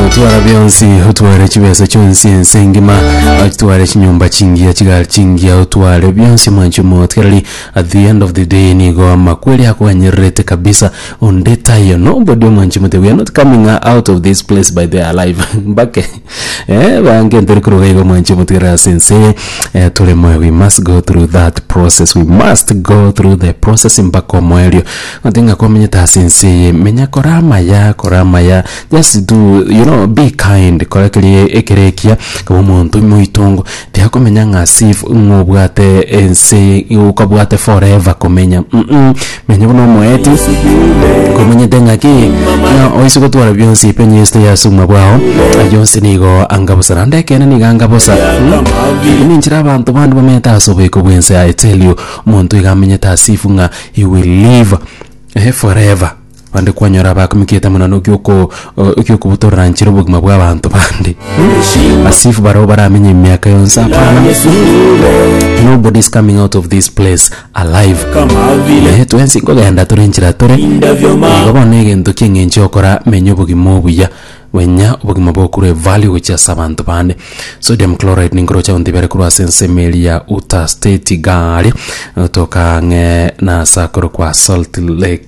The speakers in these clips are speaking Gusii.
Otwara bionsi, otware chibesa chionsi ense engima, otware chinyomba chingiya chigari chingiya, otware bionsi omonche omootereri. At the end of the day nigo amakweri akwanyererete kabisa onde taiyo. Nobody omonche motebi, we are not coming out of this place by the alive. Mbake. Eh bange ntari kuruga igo mwanchi omotigere ase ense eh, tore moyo we must go through that process we must go through the process mpaka omoerio gonte ng'a komenyete ase ense eye menya kore amaya kore amaya just do you know be kind kora kerie ekere ekiya kaba omonto moitongo tiakomenya ng'a as if ng'a obwate ense okabwate forever komenya mm Menya buna omoeti, komanyete ng'aki, ng'a oise gotwara bionsi penye yesete ya as'obogima bwao, ayio onsi nigo anga bosa, naende ekeene nigo anga bosa. Eye nenchera abanto bande bamenyete as'oboiko bw'ense yaye, tell you, omonto iga amenyete as'efu ng'a he will live eh, forever. Bande kwanyora abakumikete monano ekioko ekiokobotoranchera obogima bw'abanto bande, as'efu barabwo baramenye emiaka yonsi, hapana, nobody is coming out of this place. Alive. Ee, twensi nkogenda tore nchera tore. Igo bono egento ki'eng'encho yokora menya obogima obuya. Menya obogima bokure value gochia ase abanto bande. Sodium chloride ninkoroche gontebia are korwa ase ensemo eri ya Utah State igaa aria, gotoka ang'e na ase akorokwa Salt Lake.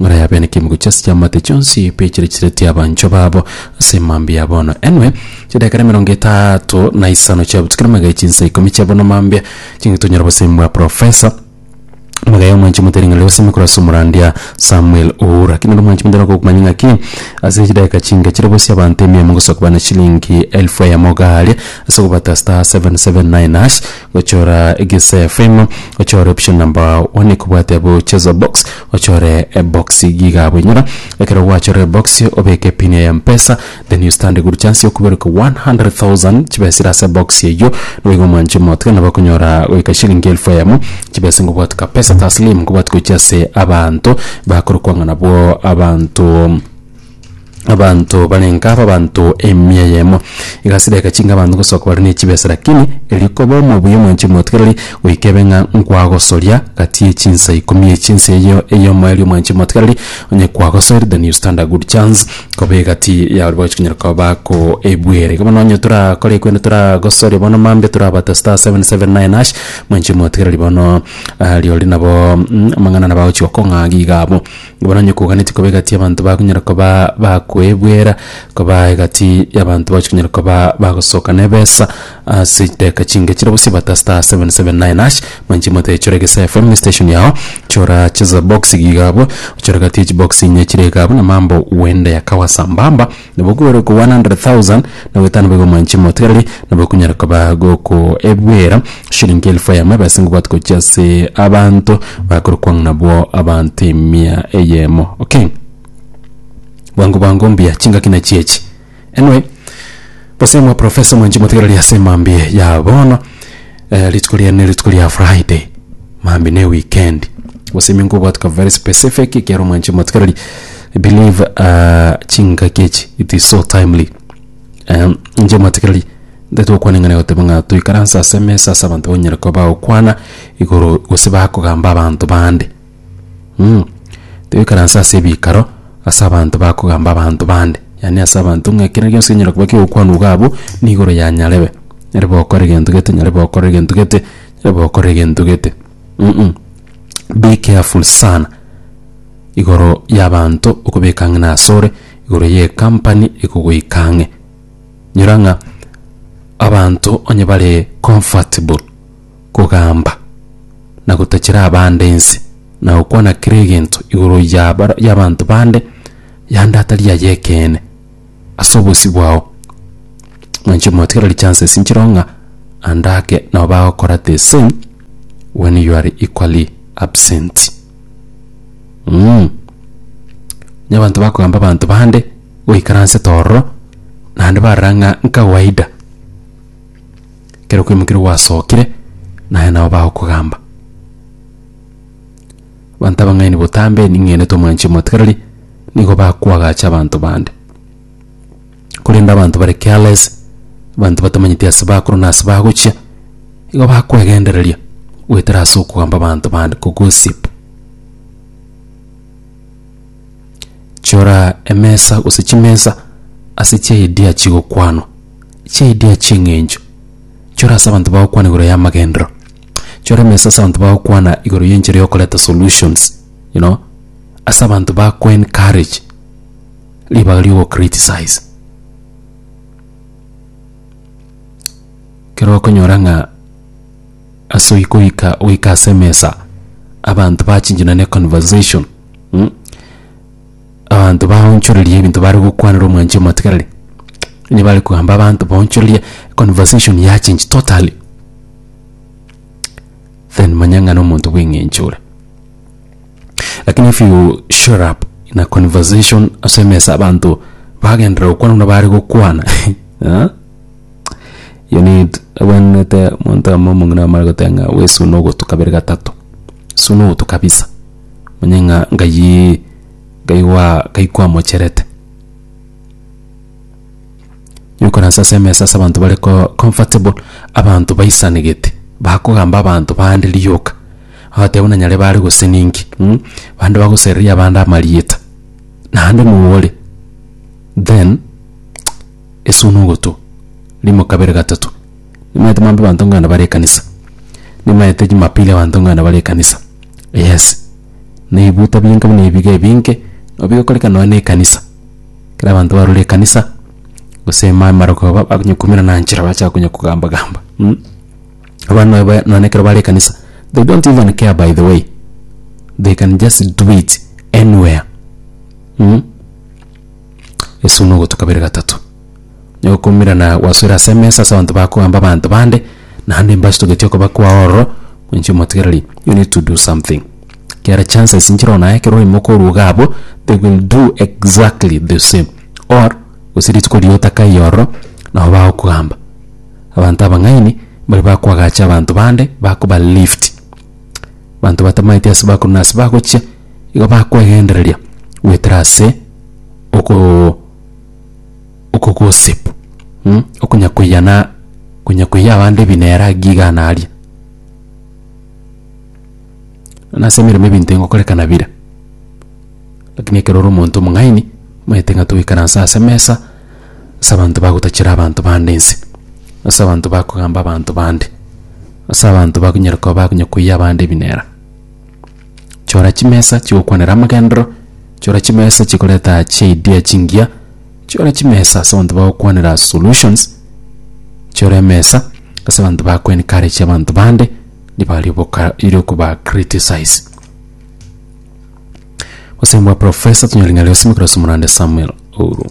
Ng'ora yabe n'ekemugo chi'ase chi'amate chionsi piachiria chiseretie abanchwa babo ase mambia ya bono enwe, chidakika nemerongo etato na isano chia botukia na magaye chinsa ikomi chia bono mambia, ching'iti onyore obosemi bwa profesa. Magaye omwanchi motere ng'a ri'obosemi korwa ase omorandia Samuel Uhura. Ki nere omwanchi motere okogumanya ng'aki ase chidakika chinke chire bosie abanto emiyomo ngosoka bana chilingi elfu eyemo gaaria ase ogobata star seven seven nine hash gochora egeseefemo ochore option number one ekobwate bochezo box Ochore eboxi giga abwo inyora ekero gwachorire eboxi obeke epin ya mpesa then you stand a good chance yokuberuka 100,000 chibesa ire ase eboxi eywo nigo omwanche omotiga nabo okonyora goika shilingi elfu eyemo chibesa nigo obwate kapesa taslim nigo obwate gochia ase abanto bakorokwa ng'a nabwo abanto Abanto barenga abe abanto emia eyemo. Egasira egachinga abanto gosoka bare ne chibesa, lakini erio koba omobuya omonche omotigereri, goika ebe ng'a nkwagosoria gati ye chinsa ikomi echi, ense eyio eye omoerio omonche omotigereri onye kwagosoire then you stand a good chance koba egati yao ribagochi konyara koba bakoebuera. Igo bono onye torakore ekero inde toragosoria bono mambia torabate star seven seven nine hash, mwanche omotigereri bono rirorio nabo amang'ana nabo agochi gokong'a iga abwo. Bono onye koganetie koba egati y'abanto bakonyara koba bakoebwera, koba egati y'abanto bagochi konyara koba bagosoka nebesa ase chidakika chinke chire bosio bata star seven seven nine hash, manye chimote chore Egesae FM ne station yago, chora chisa box iga abwo, ochore egati ye chibox inye chire iga abwo na mambo wende ya kawa sambamba. Nabo kwere oko 100,000 na goetano boigo mwanche motigareri, nabo kunyare koba gokoebwera shilingi elfu eyemo ebese ngobwate gochia ase abanto bakorokwa ng'a nabwo abanto emia eyemo. Okay. Bwango bwango mbuya chingaki nachi echi. Anyway, gose mwaprofesa mwanche motigareri ase mambia ya bono. Eh, rituko ria ne rituko ria Friday. Mambi ne weekend. Gose minko obwatuka very specific ekiaro mwanche matukarari. I believe uh, chinka kechi it is so timely. Um, nje matukarari ndete okwana ngane goteba ng'a toikaransa ase mesa ase abanto banyere koba okwana igoro gose bakogamba abanto bande. Mm. Toikaranse ase ebikaro ase abanto bakogamba abanto bande, yaani ase abanto ng'a ekero gionsi kenyara koba ki'ogokwanwa iga abwo, nigo ore yanyarebe. Nyare gokora egento gete, nyare gokora egento gete, nyare gokora egento gete. Mm. Be careful sana igoro y'abanto okobeka ang'e nasore, igoro y'ecompany ekogoika ang'e. Nyora ng'a abanto onye bare comfortable. kogamba, na gotachera abande ense, na gokwana kera egento igoro ya bara- y'abanto bande, yande atari yaye ekeene, ase obosio bwao. Nainche motigera richances nchireo ng'a ande ake nabo bagokora the same when you are equally absent. Mh. Onye abanto bakogamba abanto bande, goikaransete ororo, naende barora ng'a nkawaida. Ekero okwemokera gwasokire, naye nao bagokogamba. Abanto abang'aini botambe ning'enete omwanchi omotigareri, nigo bakoagacha abanto bande. Korende abanto bare careless, abanto batamanyeti ase bakorwa na ase bagochia, igo bakwegendereria goetera ase okogamba abanto bande, ko gossip. Chora emesa gose chimesa ase chiaidea chigokwanwa, chiaidea chi'eng'encho. Chora ase abanto bagokwana igoro y'amagenderero. Chora emesa ase abanto bagokwana igoro y'enchera y'okoreta solutions, you know, ase abanto bakoencourage ribaga ri'ogocriticize. Kero okonyora ng'a ase oikoika goika ase emesa abanto bachinchana neconversation. mm, abanto baonchoreria ebinto bare gokwanera omwanchi omotigareri, onye bare kogamba abanto baonchoreria, conversation ya change totally, then manya ng'a nomonto bw'eng'encho ore. Lakini if you shut up in a conversation ase emesa abanto bagenderera gokwana buna bare gokwana ah? You need abwenerete omonto amo omong'ina amare goteba ng'a we suna ogotu kabere gatato, suna ogotu kabisa, omanye ng'a nkayii nkayi goa nkayi kwamocherete. Nyokoransa ase emesa ase abanto bare ko comfortable, abanto baisanegete, bakogamba abanto bande rioka, agotebi buna nyare bare goseni inki mh, bande bagosereria abande amarieta, naende noo ore then. Es'o nogotwa, rimo kabere gatato, nimaete mambe banto ng'ana bare ekanisa, nimaete Jumapili abanto ng'ana bare ekanisa, yes, na ebibuta binke buna ebiga ebinke, nabo bigokoreka nonya na ekanisa, ekero abanto barure ekanisa, gose ime amarogo aba bakonye koumera na nchera bacha konya kogamba gamba mh. Abana nonya ba nonya ekero bare ekanisa, they don't even care by the way, they can just do it anywhere mh. Yeso buna ogotu kabere gatato. Onye gokoimerana gwasoire ase emesa ase abanto bakoamba abanto bande, naende mbasitogeti okoba kwao ororo, goinche omotigereri, you need to do something. Ekiagera chances inchera onye naye ekero oyomo okoruga abwo, they will do exactly the same or gose rituko riria otakaire ororo, nabo bagokoamba. Abanto abang'aini mbari bakoagacha abanto bande, bakoba lift. Abanto batamaeti ase bakorwa na ase bagochia. igo bakwegendereria goetera ase oko okogossip mh, okonya koiyana konya koiyia abande ebinera agi iga na aria. Bono ase emeremo ebinto engokorekana bire, lakini ekero ore omonto omong'aini, omanyete ng'a togoikaranse ase emesa ase abanto bagotachera abanto bande nse, ase abanto bakogamba abanto bande, ase abanto bakonyara koba bakonya koiyia abande ebinera. Chora chimesa chigokwanera amagenderero, chora chimesa chikoreta chiidea chingiya, chora chimesa ase abanto bagokwanera solutions, chora emesa ase abanto bago encourage abanto bande nigo aria oboka eri okoba criticize. Obosemi bwa Professor tonyora ng'a Liosimwe Craso Morande Samuel Ouru.